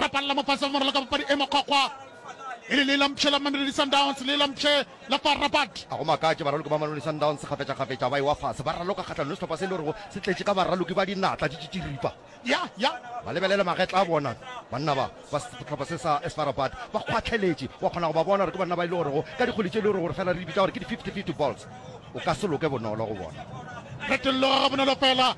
ra palela mo fase moralo ka papadi e mokgwakgwa e le le lampše la mamelodi sundowns le lampše la far rabat a go makatše baraloki ba mamelodi sundowns kgafetšakgafetša ba ewa fase ba raloka kgatlhanong sehlopha se e le gorego se tletše ka baraloki ba dinatla di tšitširipa ya ya ba lebelele magetla a bona banna ba ba sehlopha se sa esfa rabat ba kgwatlheletše wa kgona go ba bona gore ke banna ba e le gorego ka dikgwedi tše e le gore gore fela re di bitša gore ke di-fifty fifty balls o ka se loke bonolo go bona retolloga ga bonolo fela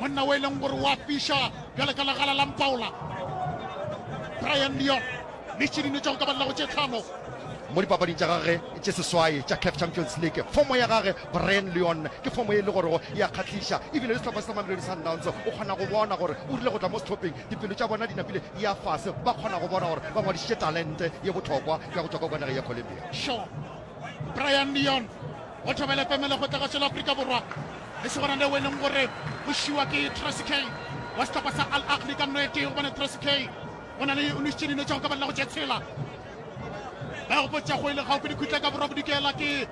Monna o e leng gore wa fiša bjale ka legala la mpaola Brian Leon le tšedine tša go ka ba lelago tše tlhano mo dipapading tša gage tše seswai tša caf champions league fomo ya gage brian leon ke fomo e le gorego ya kgahliša ebile le sehlopha se sa mamelodi sundowns o kgona go bona gore o rile go tla mo sehlopeng dipelo tša bona di napile ya fase ba kgona go bona gore ba ngwadišitše talente ye bohlokwa ya go tšwa ka kwa nageng ya colombia Brian Leon o thobele pemele go tla ka tswela Afrika Borwa le segona leo e leng gore o šiwa ke Tracy K wa setlhopha sa Al Ahly ka nno e tee gobane Tracy K o na le o nešitše dino tša go ka balela go tše tshela ba e gopotsa go e le gaufi dikhutla ka borwa bodikela ke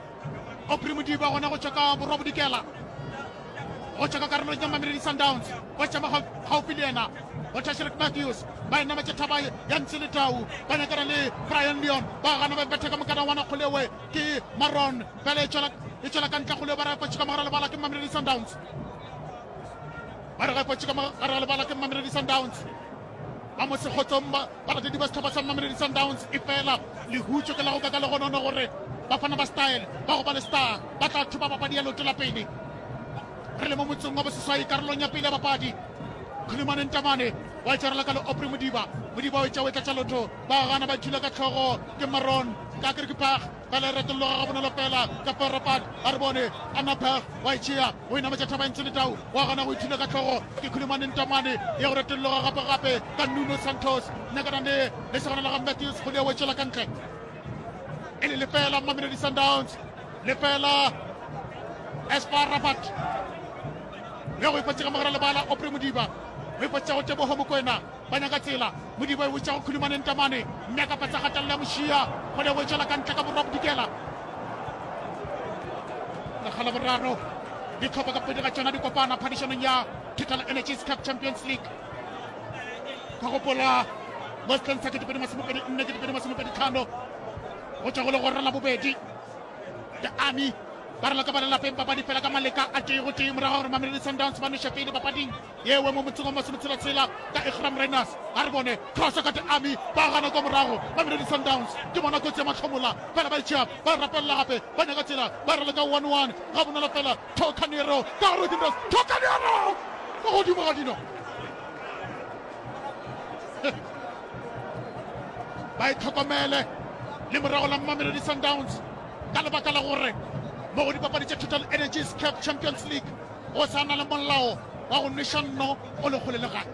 opri modiba gona go tšwa ka borwa bodikela go tšwa ka karolong ya mamelodi sundowns ba tšama gaufi le yena go tšhašelet matthews ba enama tše thaba ya ntse le tau ba nyakana le brian leon ba gana ba betha ka mokana wana kgolewe ke maron fela e tšwela ka ntle kgolewe ba re potše ka mogara lebala ke mamelodi sundowns ba re potše ka mogara lebala ke mamelodi sundowns ba mo sekgotsong balatedi ba sethaba sa mamelodi sundowns e fela lehutso ke la go ka ka le gonono gore bafana ba style ba go ba le star ba tla thuba papadi ya leoto la pele Re le mo motseng wa Boseswai karolong ya pele ya bapadi. Khulumane Ntamane wa itshwarela ka le Opri Modiba. Modiba o etša o e tlatša lotho. Ba gana ba thula ka tlhogo ke Maron ka Kirkipag. Bala e retologa ga bonolo fela ka Ferropan. A re bone Anapag wa itšhea o e nametša thaba e ntsho le tau. Wa gana go ithula ka tlhogo ke Khulumane Ntamane ya go retologa gape gape ka Nuno Santos. Nyakana ne le segona la ga Matthews Kgole o e tšwela ka ntle e le lefela Mamelodi Sundowns. lefela espa rabat ya go ipatsega mogara lebala opre modiba go ipatsega go tebogo mokwena ba nyaka tsela modiba e botsa go khulumaneng tamane mme a ka patsa gatelela mošia go le go tšwela ka ntle ka borwa bodikela lekgala boraro ditlhopha ka pedi ga tsona di kopana phadišanong ya total energies cup champions league ka gopola mo setlheng sa ketepedi masomepedi nne ketepedi masomepedi tlhano go tswa go le go rela bobedi The Army ba re laka ba lelapeng papadi fela ka maleka a tee go tee morago gore Mamelodi Sundowns ba noše pele papading yewe mo motseng wa masometshela-tshela ka Iqraam Rayners a re bone thoso ka The Army ba gana kwa morago Mamelodi Sundowns ke bona kotsi ya mahlomola fela ba itšhea ba rapelela gape ba nyaka tsela ba re leka 1-1 ga bonolo fela Tocanero ka gore o dinros Tocanero mo godimo ga dino ba e tlhokomele le morago la mmamelodi sundowns ka lebaka la gore mo go dipapadi tša total energies cap champions league go sa na le molao wa go nweša nno o le kgole le gane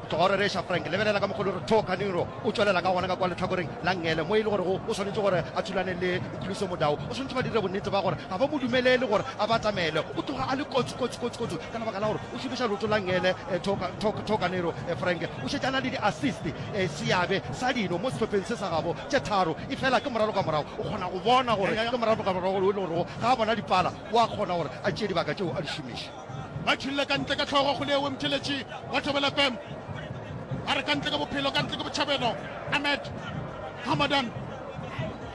tloga gore reša frank lebelela ka mogolo gore tho kaniro o tswelela ka gona ka kwa letlhakoreng la ngele mo e le gore go o swanetse gore a thulane le khuluso modao o swanetse ba dire bonnete ba gore ga ba mo dumelele gore a batamele o tloga a le kotsi kotsi kotsi kotsi ka lebaka la gore O šomiša leoto la Ngele Thokanero Frank o šetše a na le di-assist. Seabe sa dino mo sehlopheng se sa gabo tše tharo e fela ke moralo ka morago. O kgona go bona gore ke moralo ka morago wo e le gorego ga a bona dipala wa kgona gore a tšee dibaka tšeo a di šomiše. Ba tšhulile ka ntle ka hlogo go Leoe Mtheletši wa Thobela FM. A re ka ntle ke bophelo, ka ntle ke botšhabelo. Ahmed Hamadan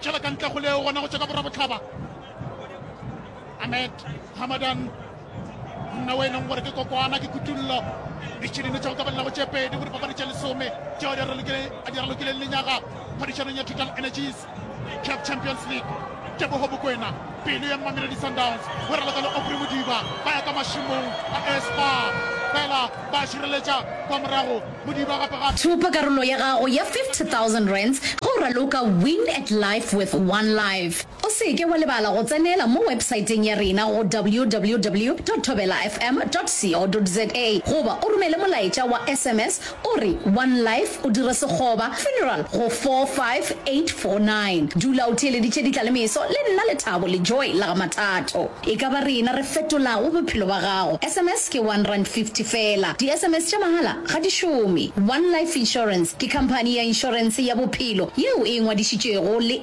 tšhela ka ntle go Leoe gona go tšwa ka borwa botlhaba. Ahmed Hamadan. nna o e leng gore ke kokwana ke kutullo ditšhidine tšeo ka belago tše pedi go dipapadi tše lesome tšeo a di ralokileng lenyaga phadišanong ya total energies cap champions league tebogo bokwena pelo ya mmameledi sundowns go raloka le opre modiba ba ya ka mašimong a espa fela ba šireletša kwa morago modiba gape gape Thupa karolo ya gago ya 50,000 rands ge o raloka Win at Life with One Life. O se ke wa lebala go tsenela mo wepsaeteng ya rena go www.thobelafm.co.za goba o romele molaetša wa sms o re One Life o dire sekgoba, funeral, go 45849. Dula o theeleditše ditlalemeso le nna Lethabo le Joy la ga Mathato. E ka ba rena re fetolago bophelo ba gago. Sms ke one rand fifty fela. Di-sms tša mahala ga di šome. One Life Insurance ke khamphani ya inšorense ya bophelo yeo e ngwadišitšwego le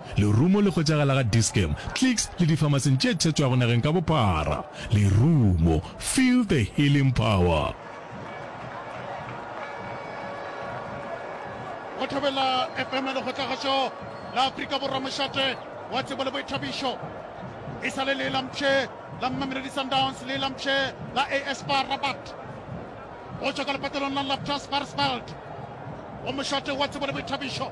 Lerumo le hwetšagala ga Dis-Chem, Clicks le difamaseng tše thetšwago nageng ka bophara. Lerumo, feel the healing power. Go Thobela FM Lekgotlagašo la Afrika Borwa Mošate wa Tsebo le Boithabišo e sa le le la mpshe la Mamelodi Sundowns le la mpshe la AS FAR Rabat go tšwa ka lepatalong la Laptas Varsveld go mošate wa Tsebo le Boithabišo.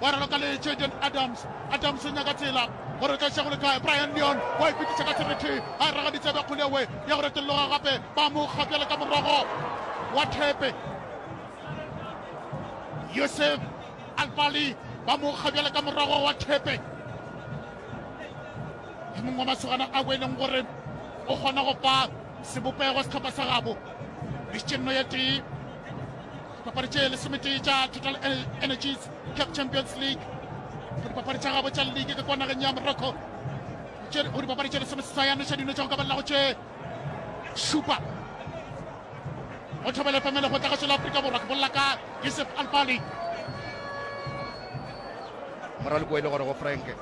Ba ralokaletše Jane Adams. Adams o nyaka tsela gore o tla iša go le kae. Brian Leon wa ipitiša ka seriti a raga ditsebe kgolewe ya go retolloga gape. Ba mo kga bjale ka morogo wa thepe. Yusuf Alfali ba mo kga bjale ka morogo wa thepe. Ke mongwe wa masogana a boeleng gore o kgona go fa sebopego setlhopha sa gabo. Mišitše nno ya tee. Dipapadi tše lesometee tša Total Energies Cup Champions League go dipapadi tša gabo tša league ka kwa nageng ya Morocco go dipapadi tše lesomeseswai a noša dino tša go ka balelago tše šupa go thobele pamele go tla ka tšwela Afrika Borwa ke bolela ka Yusuf Alfali moralokoele gore go Frank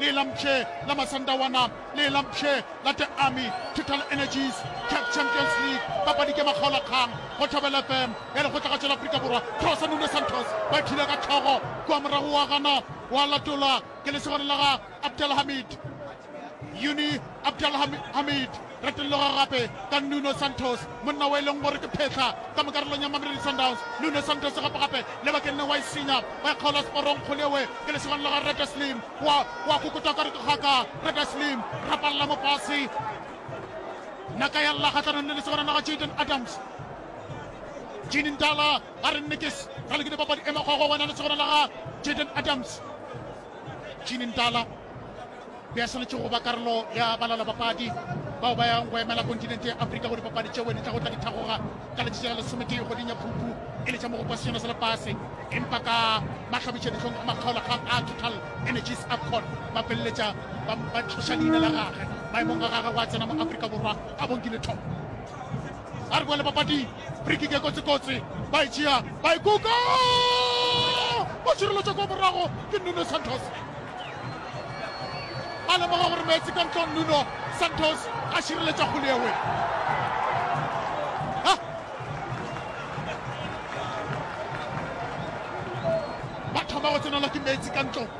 le la mpshe la Masandawana le la mpshe la The Army Total Energies CAF Champions League papadi ke makgaolakgang go Thobela FM ya lekgotlagatšo la Afrika Borwa Thosa Nuno Santos ba thile ka tlhogo kwa morago wa gana wa latola ke lesogana la ga Abdelhamid Uni Abdelhamid Retologa gape ka Nuno Santos, monna wo e leng gore ke phehla ka mo karolong ya Mamelodi Sundowns. Nuno Santos gape-gape lebakeng le wa e senya, wa e kgaola seporong. Kgoleoe ke lesogane la ga Reda Slim, wa, wa kokota ka re ke kgaka. Reda Slim, rapalla mo fase. Naka ya lla kgahlanong le lesogana la ga Jayden Adams. Gene Ndala a re nne ke ralokile papadi e makgogo, wena lesogana la ga Jayden Adams. Gene Ndala. Be a swanetše go ba karolo ya balalabapadi bao ba yang go emela kontinente ya Afrika go dipapadi tšeo di tlago tla di thagoga ka letšatši la lesometee kgweding ya Phupu e le tša mogopo wa Sejana sa Lefase. Empa ka mahlabišadihlong a makgaolakgang a Total Energies Afcon, ba feleletša ba ba tloša leina la gagwe maemong a gagwe go a tsena mo Afrika Borwa a bonkilwe thobo. a re boele papading frikike kotsikotsi ba e tšea ba e kuka o tšhireletša kwa morago ke nuno santos a lemoga gore meetse ka ntlong nuno santos a šireletša kgole ewe ba thoma go tsenelwa ke meetse ka ntlong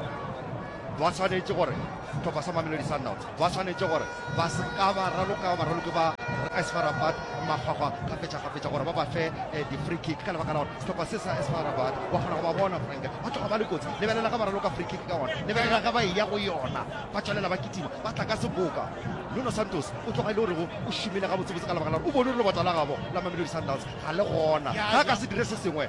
ba tshwanetse gore tlhopha sa mamelodi sundowns Ba swanetše gore ba se ka ba raloka baraloki ba SFA Rabat makgwakgwa kgafetšakgafetša gore ba ba fe eh, di-free kick ka lebaka la gore sehlopha se sa SFA Rabat wa kgona go ba bona frank ba tloga ba le kotsi lebelela ga ba raloka free kick ka gona lebelela ga ba e ya go yona ba tswalela ba kitima ba tla ka seboka Nuno Santos o tloga e le gorego o šomile gabotsebotse ka lebaka la gore o bone gore lebota la gabo la Mamelodi Sundowns ga le gona ga a ka se dire se sengwe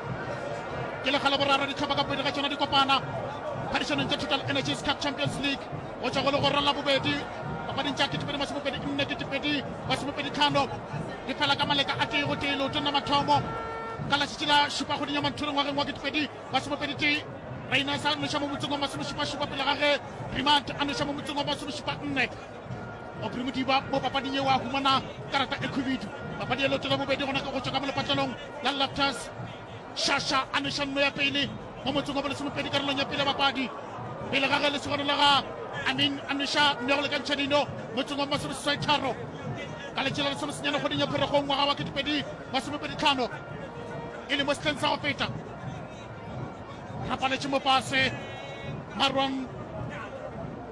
ke lekga la boraro ditlhopha ka pedi ga tsona di kopana phadišanong tša total energies cup champions league go tswa go le gorong la bobedi papading tša ketepedi masomopedi nne ketepedi masomopedi tlhano di fela ka maleka a tee go tee leoto nna mathomo ka latšatši la šupa kgweding ya manthuri ngwageng wa ketepedi masomopedi tee rainesa a noša mo motseng wa masomešupašupa pele ga ge remant a noša mo motseng wa masomešupa nne Aubrey Modiba mo papading yeo a humana karata e khubidu papadi e lotswele bobedi gona ka go tšwa ka mo lepatlelong la Loftus Shasha a neša nno ya pele mo motseng wa bolesemopedi karolong ya pele ya papadi pele ga ge lesogano la ga Amin a neša nno ya go lekantšha dino motseng wa masomeseswai tharo ka letše la lesomesenyane kgoding ya pheregong ngwaga wa ketepedi masomepedi tlhano e le mo setleng sa go feta rapaletše mopase marwang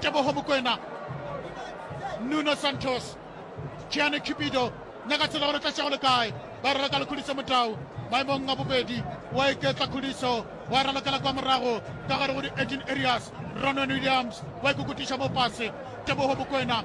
tebogo mokwena nuno santos gianni cupido nyaka tsela gore tlatšego le kae ba rera ka lekhuliso motau maemong a bobedi wa iketla khuliso wa ralokela kwa morago ka gare go di-18 areas ronon williams wa ikokutiša mo pase tebogo mokwena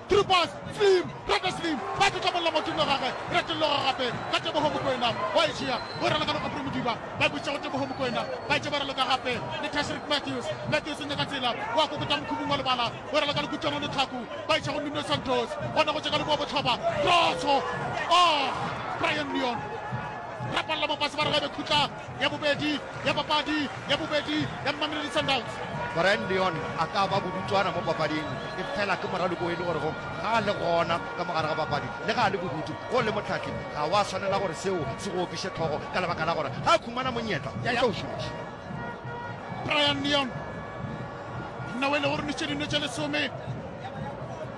Through pass, Slim, Brenda Slim, ba tlotla mollo motho nno gagwe, re tolloga gape ka Teboho Mokoena, wa e tšea, o e raloka go Aubrey Modiba, ba e bušetša go Teboho Mokoena, ba etše ba raloka gape le Tashreeq Matthews, Matthews o nyaka tsela, wa kokota mokhubung wa lebala, o e raloka le Kutlwano Letlhaku, ba e tšea go Nuno Santos, gona go tše ka leboa bohlaba, Cross, oh! Brian Leon, rapalla mo fase ba re ga e be khutla, ya bobedi ya papadi ya bobedi ya Mamelodi Sundowns. Brian Leon a ka ba bodutswana mo papading e fela ke moraloko e le gore go ga a le gona ka mogare ga papadi le ga a le bodutu go le motlhatli ga wa tshwanela gore seo se go opiše tlhogo ka lebaka la gore ga a khumana monyetla o tla o šomiša Brian Leon nna o e le gore ne tše dine tše lesome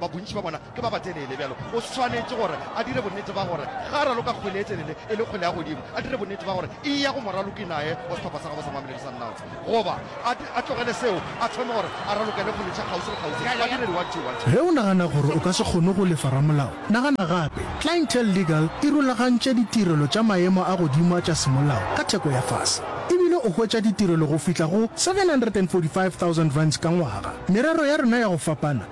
ba bontši ba bona ke ba batelele, bjalo o swanetše gore a dire bonnete ba gore ga a raloka kgwele e telele e le kgwele ya godimo, a dire bonnete ba gore e ya go moraloki naye wa sehlopha sa gabo sa Mamelodi Sundowns, goba a, a tlogele seo a thome gore a ralokele kgwele tša kgauswi le kgauswi, badiredi wa two, wa two. Ge o nagana gore o ka se kgone go lefa ramolao, nagana gape. Clientele Legal e rulagantše ditirelo tša maemo a godimo a tša semolao ka theko ya fase, e bile o hwetša ditirelo go fihla go R745,000 ka ngwaga. Merero ya rena ya go fapana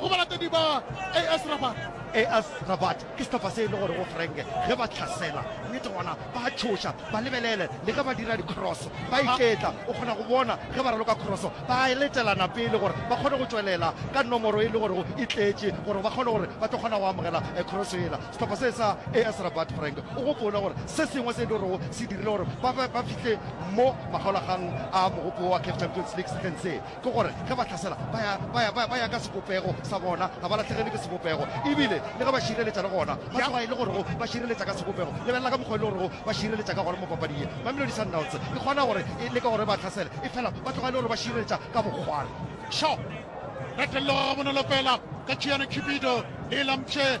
go balatedi ba AS Rabat. AS Rabat ke sehlopha se e le gorego Frank ge ba hlasela nnete gona ba a tšhoša, ba lebelele le ge ba dira dikroso ba iketla, o kgona go bona ge ba raloka kroso ba a letelana pele gore ba kgone go tšwelela ka nomoro e le gorego e tletše gore ba kgone gore ba tlo kgona go amogela kroso yela. Sehlopha se sa AS Rabat Frank o gopole gore se sengwe se e le gorego se dirile gore ba fihle mo makgaolakgang a mogopo wa CAF Champions League sehleng se. Ke gore ge ba hlasela ba ya, ba ya, ba ya ka sebopego sa bona, ga ba latlhegele ke sebopego. E bile le ge ba šireletša le gona, ba tloga e le gorego ba šireletša ka sebopego. Lebelela ka mokgwa e le gorego ba šireletša ka gona mo papading ye. Mamelodi Sundowns e kgona gore e leke gore e ba hlasele, efela ba tloga e le gore ba šireletša ka bokgwala. Sho! Retello ga gabonolo fela ka Chiane Cupido le e lamtše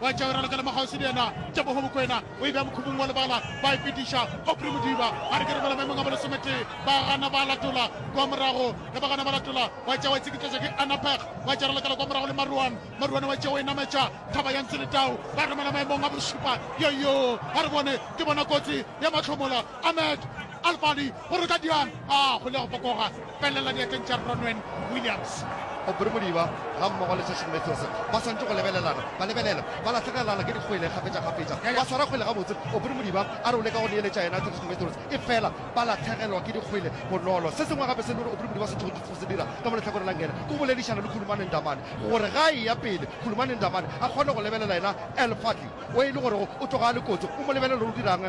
wa e tšawerela ka lemakgauswi le yena tebogo mokwena o e bea mokhubung wa lebala ba e fetiša opri modiba a re ke re bola maemong a bolesometee ba gana ba latola kwa morago ge ba gana ba latola wa tšea wa e tsekitletša ke anapeg wa tšarela kala kwa morago le maruane maruane wa tšea wa e nametša thaba ya ntse le tau ba romela maemong a bošupa yoyo a re bone ke bona kotsi ya mahlomola Ahmed Alfali o re ka diana a kgole go fokoga felela diatleng tša Ronwen Williams. Aubrey Modiba ga mmogo le Session Matthews ba swantše go lebelelana, ba lebelelwa ba lahlegelana ke dikgwele kgafetšakgafetša. Ba swara kgwele gabotse, Aubrey Modiba a re o leka go neeletša yena Tiriso Matthews efela ba lahlegelwa ke dikgwele bonolo. Se sengwe gape se e le gore Aubrey Modiba a swanetšego go se dira ka mo lehlakoreng la Ngena ke go boledišana le Khulumani Ndamane gore ga a eya pele, Khulumani Ndamane a kgone go lebelela yena Alfali o e le gorego o tloga a le kotsi, o mo lebelele gore o dira'ng.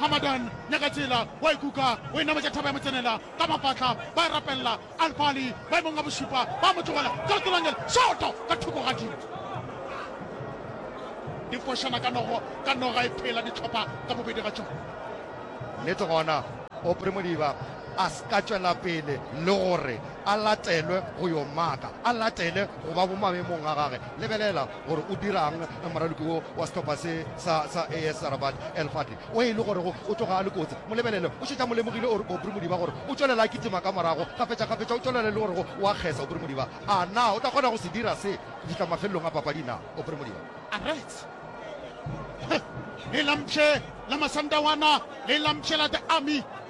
Hamadan Nyakatsela wa e kuka o e nametša thaba ya motsenela ka mafahla ba e rapelela Alfali maemong a bošupa ba mo tlogela Tsolotsolangel shoto ka thoko ga dilo di fošana ka nogo ka noga e phela ditlhopha ka bobedi ga tšona. Nnete gona Aubrey Modiba a se ka tšwela pele le gore a latelwe go yo maka, a latele go ba bo maemong a gage. Lebelela gore o dirang moraloki wo wa sehlopha se sa sa AS Rabat El Fadli o e le gore go o tloga a le kotsi mo lebelele o šetša mo lemogile o re Obri Modiba gore o tšwelela a kitima ka morago kgafetšakgafetša o tšwelela le gore go wa kgesa Obri Modiba a na o tla kgona go se dira se go fihla mafelelong a papadi na Obri Modiba a right le lampše la masandawana le lampše la the army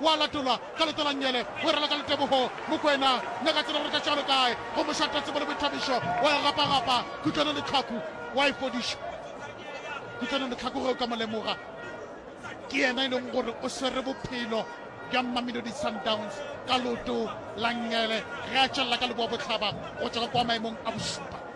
o a latolwa ka letolanyele, o e rwala ka letebogo. Mokwena, nna ka tseba gore ka tšwalo kae, go mošata tsebo le boithabišo, wa e gapagapa kutlwanong le tlhaku, wa e fodiša kutlwanong le tlhaku. Ge o ka mo lemoga, ke yena e leng gore o swere bophelo bja Mamelodi Sundowns ka leoto la nyele ge a tšwelela ka leboabohlaba go tšwa ka kwa maemong a bošupa.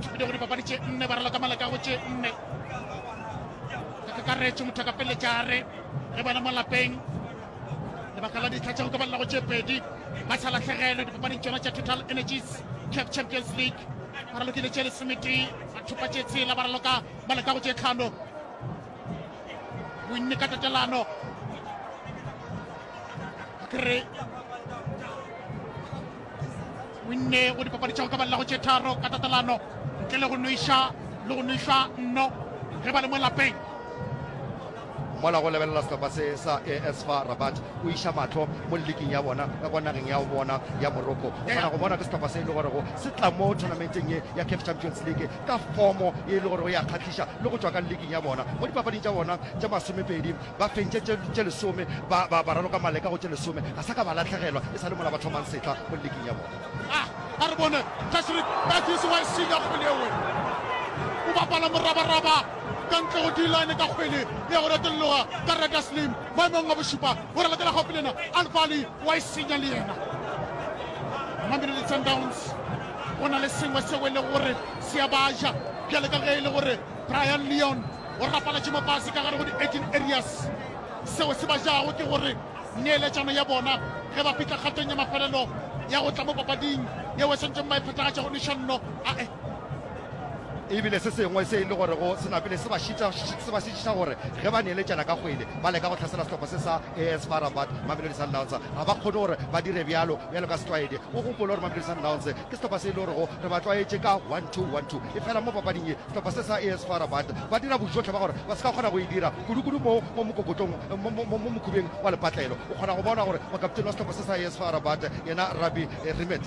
Tšhupile go dipapadi tše nne ba raloka maleka go tše nne ka kakaretšo motho a ka peletša a re re bona mo lapeng lebaka la ditlha tša go ka balela go tše pedi ba sa latlhegelwe dipapading tšona tša total energies cap champions league ba ralokile tše lesometee ba thupa tše tshela ba raloka maleka go tše tlhano bonne ka tatelano ka kere winne go dipapadi tšago ka balelago tše tharo ka tatalano ntle le go noiša le go noišwa nno ge ba le mo lapeng mola go lebelela sehlopha se sa asfa rabat o iša matlho mo leking ya bona ka kwa nageng ya bona ya morocco o kgona go bona ke sehlopha se e le gorego se tla mo tournamenteng ye ya caf champions league ka fomo e le gorego ya kgahliša le go tšwa ka leking ya bona mo dipapading tša bona tša masomepedi ba fentše tše, tše lesome ba, ba, ba raloka maleka go tše lesome ga sa ka ba latlhegelwa e sa le mola ba thomang setla mo leking ya bona ah, a re bone tashrik batis wa esenya kgwele ewe o bapala morabaraba ka ntle go dilane ka kgwele ya go retelloga ka reta slim maemong a bošupa o relatela gaufi lena alfali wa esenya le yena mamelodi sundowns go na le sengwe seo e le gore se ya baja bjale ka ge e le gore brian leon Go rapaletše mapase ka gare go di-18 areas. Seo se ba jago ke gore neeletšano ya bona ge ba fihla kgatong ya mafelelo ya go tla mo papading yeo e swantšeng ba e phethagatša go nešanno ae e bile se sengwe se e le gore go sena pele se ba šitiša gore ge ba neeletšana ka kgwele ba leka go tlhasela sehlopha se sa as far rabat mamelodi sundowns ga ba kgone gore ba dire bjalo bjalo ka setlwaedi o gopole gore mamelodi sundowns Ke sehlopha se e le gorego re ba tlwaetše ka one two one two. Efela mo papading ye, sehlopha se sa AS FAR Rabat ba dira bojohle ba gore ba se ka kgona go e dira, kudu-kudu mo mo mokokotlong mo mo mo mokhubeng wa lepatlelo. O kgona go bona gore mokaptene wa sehlopha se sa AS FAR Rabat, yena Rabbi Rimet,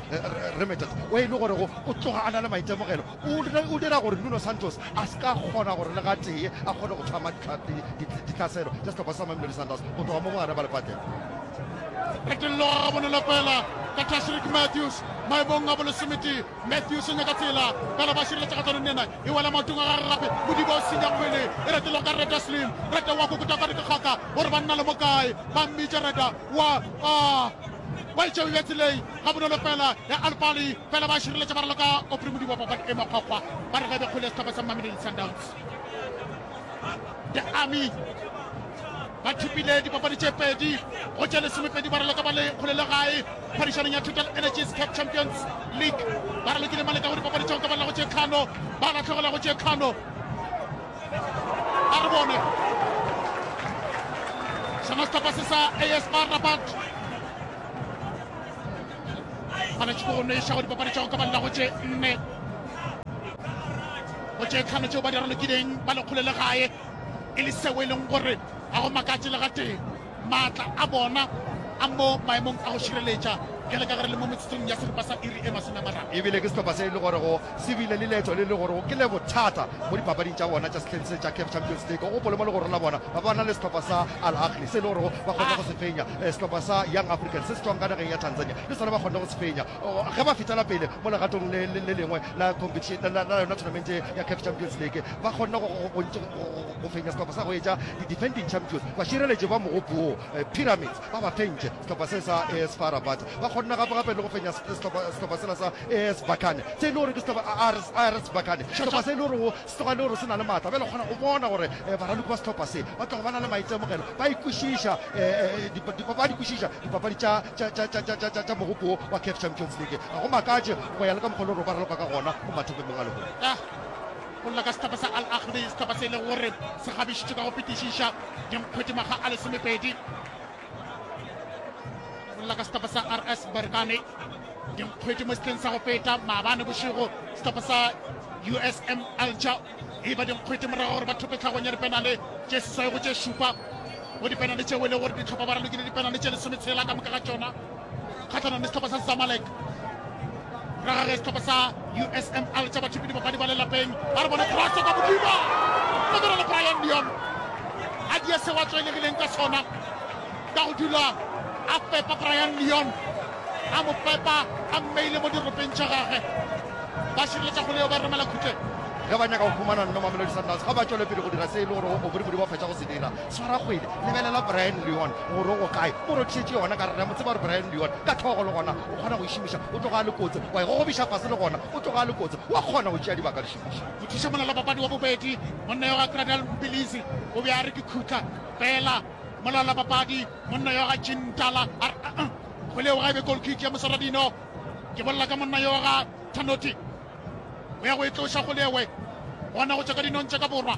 Remetet, o e le gorego o tloga a na le maitemogelo, O dira gore Nuno Santos a se ka kgona gore le gatee a kgone go tlhama ditlhaselo tša sehlopha sa Mamelodi Sundowns go tloga mo bogare ba lepateng. Phetollo ga gabone la fela ka Tashreeq Matthews maemong a bolesometee. Matthews o nyaka tsela fela ba šireletsa kgatlhanong le yena e wela maotong a gage gape. Modiba o senya kgwele e retelwa ka Reda Slim. Reda wa kokota ka dikgakgaka gore ba nna le mokae ba mmitša Reda wa a ba itšebe bja tseleng. ga bonolo fela ya alpali fela ba šireletša ba raloka opre modibo papadi e makgwakgwa ba re gabe kgole sehlopha sa mamelodi sundowns the army ba thipile dipapadi tše pedi go tša lesomepedi ba raloka ba le kgole le gae phadišanong ya total energies cap champions league ba ralokile maleka go dipapadi tšeo ka ba lago tše tlhano ba latlhegela go tše tlhano a re bone sona sehlopha se sa asr rabat gona tšeko go noeša go dipapadi tšago ka banna go tše nne go tše tlhano tšeo ba di ralokileng ba lekgole le gae e le seo e leng gore ga go makatše le gatee maatla a bona a mo maemong a go šireletša bjale ka gare le mo metsotsong ya seripa sa iri e masome a mararo ebile ke sehlopha se e le gore go Se bile le leetšo le le gorego ke le bothata mo dipapading tša bona tša sehleng se tša CAF Champions League. O gopole mo legorong la bona ba bana le sehlopha sa Al Ahly se le gorego ba kgonne go se fenya. Eh, sehlopha sa Young Africans se se tšwang ka nageng ya Tanzania le sona ba kgonne go se fenya oh, ge ba fetela pele mo legatong le, le, le lengwe la competition la, la yona tournament ya CAF Champions League. Ba kgonne go, go, go, go, go fenya sehlopha sa go etša di-defending champions bašireletši ba mogopo wo eh, Pyramids. ba ba fentše sehlopha se sa AS FAR Rabat ba kgonne gape gape le go fenya sehlopha sela sa AS Bakane se e le gore ke sehlopha AS Bakane sehlopha se e le gore go se tloga le gore se na le maatla bjale kgona go bona gore eh, baraloki ba sehlopha se ba tlogo ba na le maitemogelo ba ikwešiša eh, eh, ba di kwešiša dipapadi tša mogopo wa caf champions league ga go makatše go ya le ka mokgwa le gore ba raloka ka gona go mathopemong a lehono ah! go lla ka sehlopha sa Al Ahly sehlopha se e lego gore se kgabišitšwe ka go fetišiša dinkgwedi makga a lesomepedi go lla ka sehlopha sa RS Berkane dinkgwedi mo setleng sa go feta maabane bošego sehlopha sa USM Alger e ba dinkgwedi morago gore ba thope tlhagong ya dipenale tše seswai go tše šupa mo dipenale tšeo e le gore ditlhopha ba ralokile dipenale tše lesometshela ka moka ga tšona kgatlhanong le setlhopha sa zamalek ra gage setlhopha sa usm al tša bathipi dibapadi ba lelapeng ba re bone cross ka modimo fedora le brian leon a dia se wa tswelegileng ka sona ka go dula a fepa brian leon a mo fepa a mmeile mo diropeng tša gage ba šireletša kgole yo ba romela khutleng ge ba nyaka go fumana nno mamelodi sundowns ga ba tšwele pele go dira se e le gore o bodibodi ba fetša go se dira Swara kgwele, lebelela Brian Leon gore o go kae, o rothišetše yona ka re re a mo tseba gore Brian Leon ka hlogo le gona o kgona go e šomiša, o tloga a le kotsi wa e gogobiša fase le gona o tloga a le kotsi wa kgona go tšea dibaka le šomiša. Mothušamolaolapapadi wa bobedi, monna yo ga Cradle Mpilisi o be a re ke khutla fela, molaolapapadi monna yo ga Jean Ntala a re uh-uh, kgwele eo ga e be goal kick ya Mosaradino, ke bolela ka monna yo ga Thanoti o ya go e tloša kgwele ewe gona go tšwa ka dinong tša ka borwa.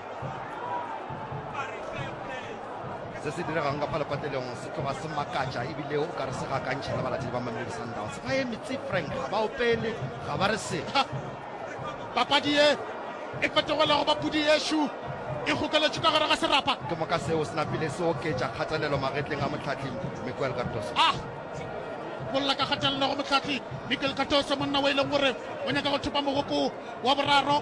se se diregang ka phalepatelong se tloga se makatša ebile o ka re se gakantšha le balatedi ba mamelodi sundowns ba ye metsi frank ga ba opele ga ba re setha papadi ye e fetogela go bapudi yešo e gokeletše ka gare ga serapa ke moka seo se napile se oketša kgatelelo magetleng a motlhatli miquel cardoso ah bolla ka kgatelelo go motlhatli miquel cardoso monna o e leng gore o nyaka go thopa mogopo wa boraro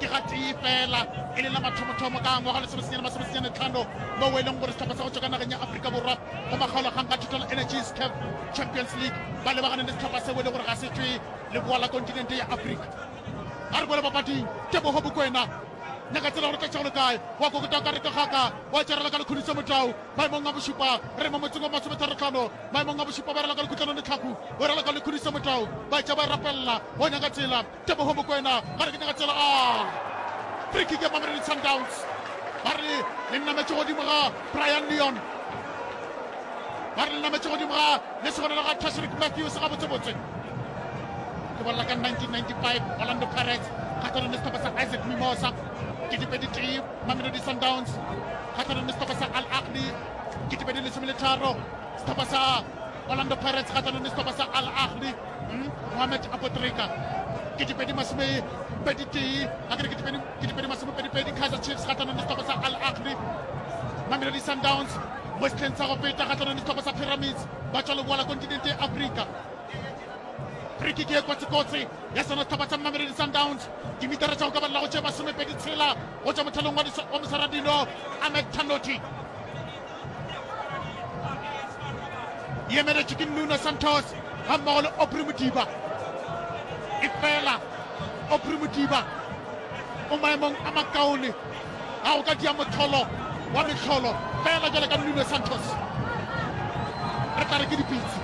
ke ga tee fela e le la mathomothomo ka ngwaga lesome senyane masome senyane tlhano mo e leng gore setlhopha sa go tswa ka nageng ya aforika borwa go makgaolakgang ka total energies cap champions league ba lebagane le setlhopha seo e leng gore ga se tswe le boa la kontinente ya aforika a re kwele papading tebogo bokwena nyaka tsela gore tlatšego le kae wa kokota ka reka kgaka wa tšerela ka lekhudiso motau maemong a bošupa re mo motseng wa masometharotlhano maemong a bošupa ba rela ka lekhutlano letlhaku o rela ka lekhudiso motau ba tša ba rapelela o nyaka tsela Teboho Mokoena ba re ke nyaka tsela a free kick ya Mamelodi Sundowns ba re le nnametše godimo ga Brian Leon ba re le nnametše godimo ga le segonela ga Tashrik Matthews gabotsebotse ke bolela ka 1995 Orlando Pirates kgatlhanong le setlhopha sa Isaac Mimosa ketepedi tee Mamelodi Sundowns kgatlhanong le setlhopha sa Al Ahly ketepedi lesome le tharo setlhopha sa Orlando Pirates kgahlanong le sehlopha sa Al Ahly hmm? Mohamed Abotrika ke dipedi masome pedi tee a kere ke dipedi masome pedi pedi Kaizer Chiefs kgahlanong le sehlopha sa Al Ahly Mamelodi Sundowns mo setlheng sa go peta kgahlanong le sehlopha sa Pyramids ba tswa leboa la kontinente ya Afrika friki ke e kotsikotsi ya sona setlhopha sa mamelodi sundowns dimitara tsa go ka balela go tšee masomepedi tshela go tswa mothelong wa mosaradilo amet tanoti e emeletše ke nuno santos ga mmogo le opri modiba e fela opri modiba o maemong a makaone ga go ka dia motholo wa metlholo fela jale ka nuno santos re tla re ke dipitsi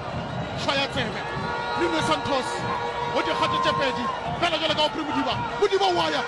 tshwa ya tsebe nuno santos go dikgato tše pedi fela jale ka opri modiba modiba waya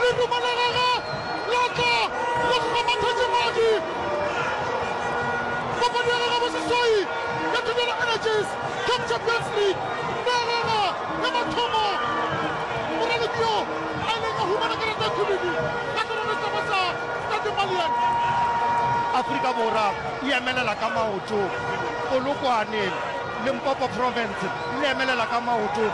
Lerumo la gagwe la tla le kgomathatše madi. Papadi ya gagwe ya boseswai ya Thobela Energies Cup Champions League na rera ya mathomo moraloki yo a ileng a humana karata e khubidu ka serere sa ba sa Tate Malian. Afrika Borwa e emelela ka maoto Polokwane, Limpopo Province le emelela ka maoto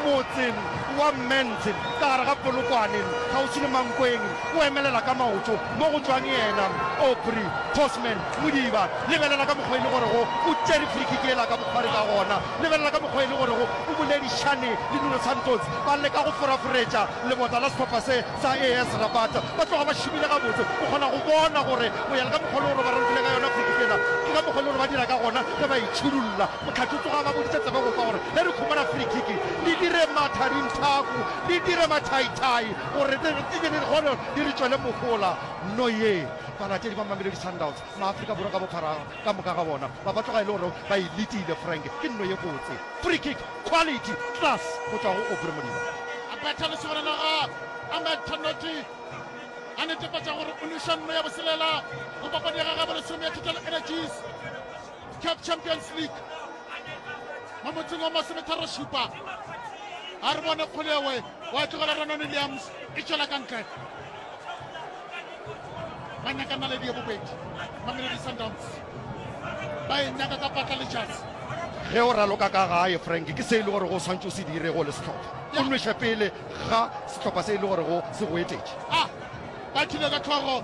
motseng wa Mmentse. ka gare ga Polokwane, kgauswi le Mankweng, o emelela ka maoto mo go tšwang yena Aubrey Postman Modiba. Lebelela ka mokgwa e le gorego o tšere free-kick yela ka bokgwari ka gona. Lebelela ka mokgwa e le gorego o boledišane le Nuno Santos. Ba leka go foraforetša lebota la sehlopha se sa AS Rabat. Ba tloga ba šomile gabotse. O kgona go bona gore go ya le ka mokgwa e le gore ba rantile ka yona free-kick yela, ke ka mokgwa e le gore ba dira ka gona ge ba e tšhurulla. Motlhatho tsoga ba boditše tsebe go kwa gore ge re khumana free kick le dire mathadinthaku le dire mathaithai gore dikgone di re tšwele mohola. No ye balatedi ba Mamelodi Sundowns Maafrika Borwa ka bophara ka moka ga bona ba ba tloga e le gore ba e letile. Frank ke no ye botse free kick quality class go tšwa go Aubrey Modiba. A betha lesogana la ga Ahmed Thanoti a netefatša gore o nweša no ya boselela go papadi ya gagabo lesome ya Total Energies. Caf Champions League mo motseng wa masometharošupa a re bone kgolewe wa tlogela Renon Williams e tšwela ka ntle ba nyaka naledi ye bobedi mamelodi sundowns ba e nyaka ka patla letšatsi ge o raloka ka gae frank ke se e le gore go swantse o se dire go le setlhopha o nweša pele ga setlhopha se e le gore go se go etetše ah, ba thile ka tlhogo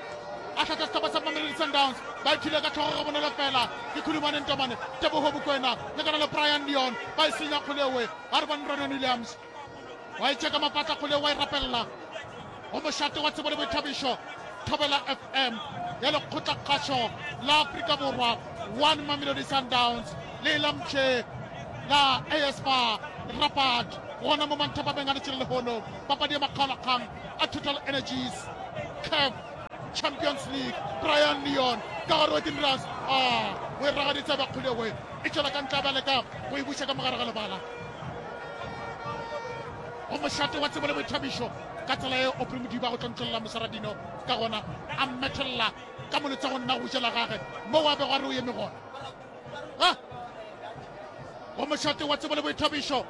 a hlatha sehlopha sa mamelodi sundowns ba ithile ka tlhogo ga bonolo fela ke khulumane ntomane tebogo bokwena le kana le brian leon ba e senya kgolewe a re bane ronon williams wa e tšeka mapatla kgolewe wa e rapelela go mošate wa tsebo le boithabišo thobela fm ya lekgotlakgašo la aforika borwa one mamelodi sundowns le elamtšhe la aspa rapat gona mo manthapameng a letšele lehono papadi ya makgaolakgang a total energies caf champions league brian leon ka gare wa dinras a o e ragaditse ba kgolego e tšwela ka ntla ba leka go e buša ka mogare ga lebala go mošate wa tsebo le boithabišo ka tsela e opre modiba go tlontlolela mosaradino ka gona a mmethelela ka molotsa go nna go jela gage mo wa bego a re o eme gona go mošate wa tsebo le boithabišo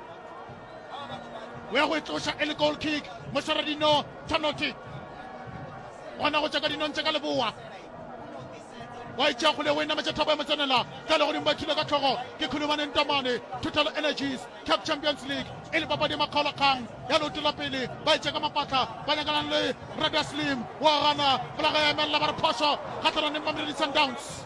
o ya go e tloša e le goal kick mošwara dino tshwanoti gona go tša ka dinong tša ka leboa wa itšea kgole o e nametša thabo ya motsenela ka legodimo ba thilwe ka tlhogo ke khulumaneng tamane total energies cap champions league e le papadi ya makgaolakgang ya leoto la pele ba itša ka mapatla ba nyakanang le rada slim wa gana folaga ya emelela ba re phoso kgatlhananeng mamelodi sundowns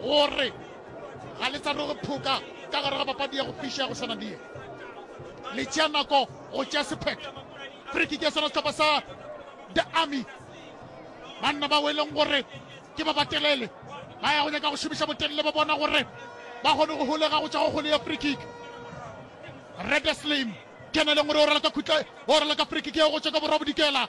gore ga le sa no re phoka ka gare ga papadi ya go fiša ya go swana die le tšea nako go tšea sephetho friki ke sona setlhopha sa the army banna ba weleng gore ke ba batelele ba ya go nyaka go šomiša botelele ba bona gore ba kgone go holega go tšwa go kgole ya frikik redeslim keneleng gore o rela ka khutla o rela ka frikik ya go tšwa ka borwa bodikela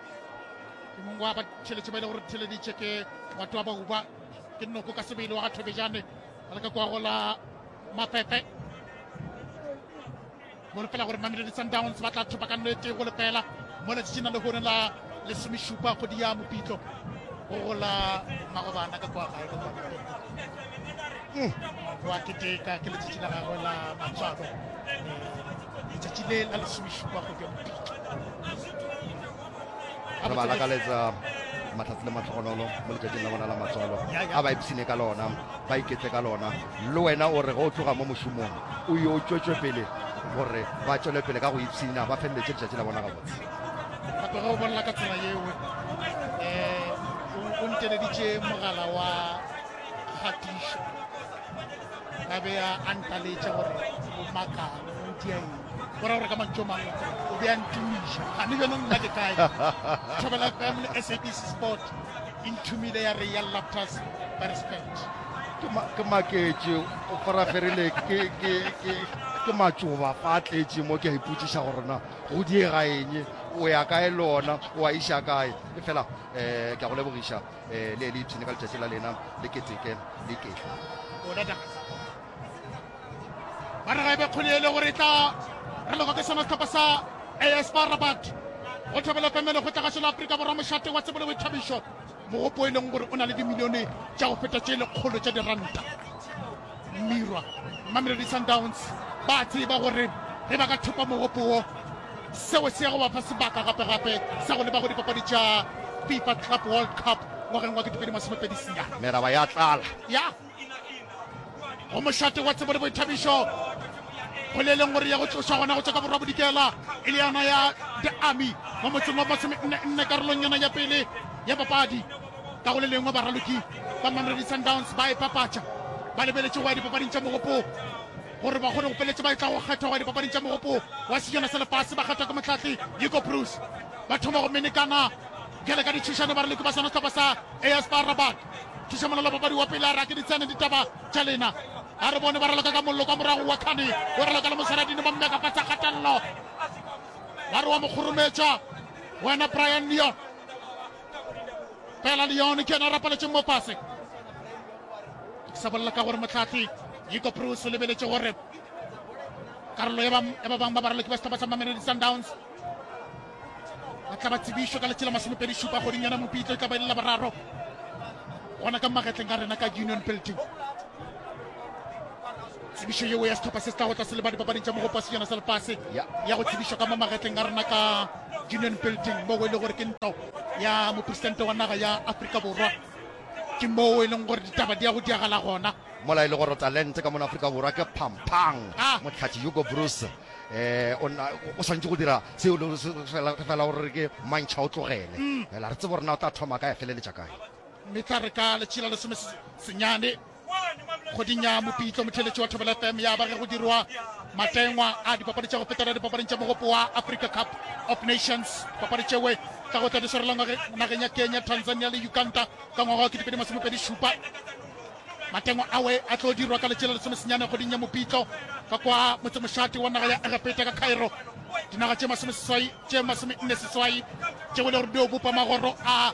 ke mongwe wa batšheletše ba ile gore theleditše ke batho ba bauba ke noko ka sebele wa ga thobejane ba leka kwa gola mapepe gole fela gore mamelodi sundowns ba tla thopa ka nnete go lefela mo letšina le gone la lesomešupa kgodi ya mopitlo go gola magobana ka kwa gae wa keteka ke letšatši la gagwe la matswalo letšatši le la lesomešupa go bja bopiki re ba lakaletsa matlhatsi le matlhogonolo mo letšatšing la bona la matswalo a ba ipshine ka lona ba iketle ka lona le wena o re ge o tloga mo mošomong o yo o tšwetšwe pele gore ba tšwele pele ka go ipshina ba feleletse letšatši la bona gabotse gape ge o bonela ka tsela yeo um eh, o nteleditše mogala wa kgatišo a be a antaletša gore o makang o dia eng gore gore ka mantso mang o be a ntumiša a ne bjanong nna ke kae thobela fm le sabc sport e nthumile ya re ya laptas ba respect ke maketše o faraferile ke matšoba fa a tletše mo ke a ipotsiša gorena go diega eng o ya kae le ona o a iša kae e fela um ke a go lebogiša um le le ipshine ka letšatši la lena le keteke le ke ba re ga e be kgone ele gore e tla re logo ke sona setlhopha sa as ba rabat go thobela pemele go tlagašo la aforika borwa mošate wa tsebole boithabišo mogopo e leng gore o na le dimilione tša go feta tše lekgolo tša diranta mmirwa mamelodi sundowns ba tseba gore ge ba ka thopa mogopo wo Seo se ya go ba fa sebaka gape-gape sa go leba go dipapadi tša FIFA Club World Cup ngwageng wa 2020 sia. Meraba ya tlala. Ya go mošate wa tsebo le boithabišo go le leng gore ya go tlošwa gona go tšwa ka borwa bodikela e le yana ya the army mo motseng wa masome nne nne karolong yana ya pele ya papadi ka go le lengwe baraloki ba mamelodi sundowns ba e papatša ba lebeletše go ya dipapading tša mogopo gore ba kgone go peletše ba e tla go kgethwa dipapading tša mogopo wa sejana sa lefase ba kgethwa ke motlhatli yiko bruce ba thoma go menekana bjale ka ditšhišane ba re leke ba sona setlhopha sa aspa rabat thuša molelo papadi wa pele a rake ditshene ditaba tša lena a re bone ba raloka ka mollo kwa morago wa khane o raloka le mosaradine ba mmeka fa tsa kgatelelo ba re wa mokgorometša wena brian leon Pela Leone ke yena a rapaletšeng mo fase. Ke sa bolela ka gore motlhatlhi Yiko Bruce o lebeletše gore karolo ya ba bang ba baraloki ba sehlopha sa Mamelodi Sundowns ba tla ba tsebišo ka letšela masomepedi šupa kgoding yona mopitlo e tla ba elela boraro gona ka magetleng ka rena ka union building Tsebišo yeo ya sehlopha se se tlago tlase le ba dipapading tša mogopo wa sejana sa lefase ya go tsebišwa ka mo magetleng a rena ka Union Building moo e le gore ke ntlo ya mopresidente wa naga ya Afrika Borwa ke moo e leng gore ditaba di ya go diagala gona mola e le gore talente ka mona Afrika Borwa ke phampang ah. motlhatši Hugo Bruce eh o swantse go dira seo e le fela gore ke mantšha o tlogele mm. fela re tsebo rena o tla thoma kae feleletša kae mme tla re ka letšhila lesome senyane godinya mopitlo motheletši wa thobela fm ya ba ge go dirwa matengwa a dipapadi tša go fetela dipapading tša mogopo wa africa cup of nations papadi tšewe tla go tla di swarela nageng ya kenya tanzania le uganda ka ngwaga wa ketepedi masomepedi šupa matengwa awe a tlo dirwa ka letšela lesomesenyane goding ya mopitlo ka kwa motsemošate wa naga ya egepeta ka cairo dinaga tše masome seswai tše masome nne seswai tšeo le gore di o bopa magoro a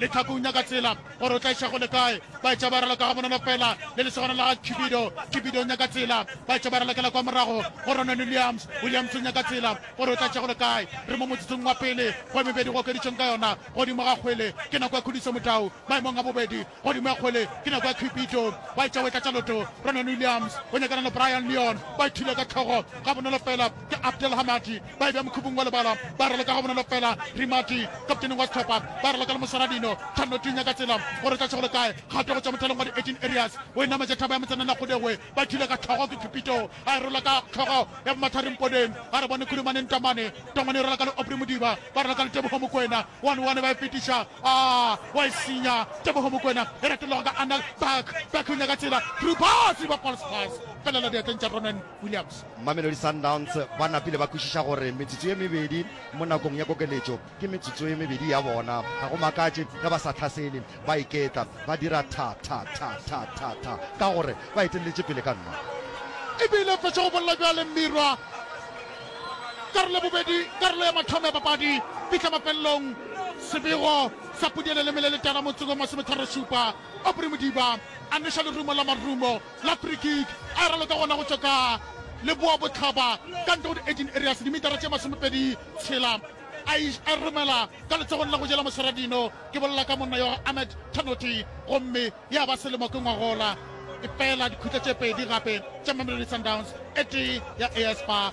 Lethakong nyaka tsela gore o tla iša go le kae. Ba etša ba raloka gabonolo fela le lesogana la ga Cupido. Cupido o nyaka tsela. Ba etša ba ralokela kwa morago go Ronan Williams. Williams o nyaka tsela gore o tla iša go le kae. Re mo motsotsong wa pele go e mebedi go okeditšweng ka yona godimo ga kgwele. Ke nako ya Khudiso Motau maemong a bobedi godimo ya kgwele. Ke nako ya Cupido. Ba etša o e tlatša loto. Ronan Williams o nyakana le Brian Leon. Ba ithula ka tlhogo gabonolo fela ke Abdel Hamadi. ba e bja mokhupung wa lebala, ba raloka ga bonolo fela. Rimati, kapteneng wa sehlopha, ba raloka le moswana dino, thanno tunya ka tsela, gore tša šego le kae, kgato go tšwa mothalong wa di-18 areas, o e nametša thaba ya motsanana Kgudegwe, ba thile ka hlogo ke Khupito, a e rola ka hlogo ya bomathareng Podeng, a re bone Khudumaneng Tamane, Tamane e rola ka le Aubrey Modiba, ba raloka le Teboho Mokwena, one one ba e fetiša, aa, wa e senya, Teboho Mokwena, e retologa ka Anel, back, back o nyaka tsela, through pass, riba false pass, felela diatleng tša Ronan. Williams, Mamelodi Sundowns ba napile ba kwešiša gore metsotso ye mebedi mo nakong ya kokeletšo ke metsotso ye mebedi ya bona. Ga go makatše ge ba sa hlasele, ba iketa, ba dira tha, tha, tha, tha, tha, tha, ka gore ba eteleletše pele ka nna. E be e le fetša go bolela bjale Mmirwa. Karolo ya bobedi, karolo ya mathomo ya papadi, fihla mafelelong. Sebego sa Pudi e lelemile letala motseng wa masometharo-šupa. Aubrey Modiba a neša lerumo la marumo. la free kick a e raloka gona go tšwa ka leboa botlhaba ka ntle go di-18 areas dimetara tše masomepedi tshela a e romela ka letsogong la go jela moseradino ke bolela ka monna yo ga ahmed tanoti gomme ya ba selemo ke ngwagola e fela dikhutla tše pedi gape tša mamelodi sundowns e tee ya as ba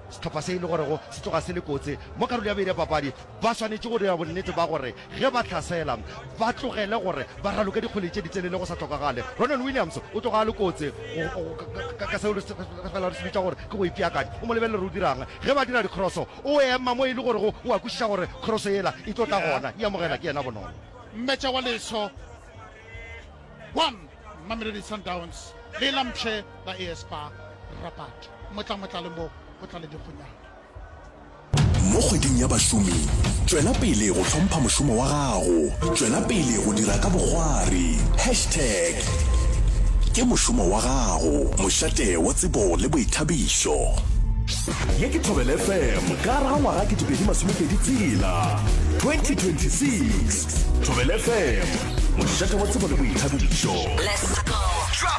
Sehlopha se e le gorego se tloga se le kotsi mo karolo ya bobedi ya papadi ba swanetše go dira bonnete ba gore ge ba hlasela ba tlogele gore ba raloke dikgwele tše ditelele go sa tlhokagale. Ronwen Williams o tloga a le kotsi ka seo re fela re se bitša gore ke go ipeakanya. O mo lebelele gore o dira'ng ge ba dira dikroso, o ema mo e le gorego o a kwešiša gore kroso yela e tlo tla gona, e amogelwa ke yena bonolo. Mmetša wa Leso 1 Mamelodi Sundowns ge e lampšhe ba Espa Rabat motlamotlale mo go tlale dikgonyana. Mo kgweding ya bašomi, tšwela pele go hlompha mošomo wa gago. Tšwela pele go dira ka bokgwari. Hashtag Ke mošomo wa gago, mošate wa tsebo le boithabišo. Ye ke Thobela FM ka gare ga ngwaga 2026, 2026. thobelefm mošate wa tsebo le boithabišo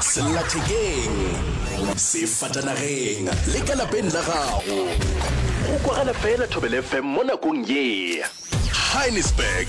sellathekeng sefatanageng le ka lapeng la gago go kwagala fela thobelefm mo nakong ye heinisberg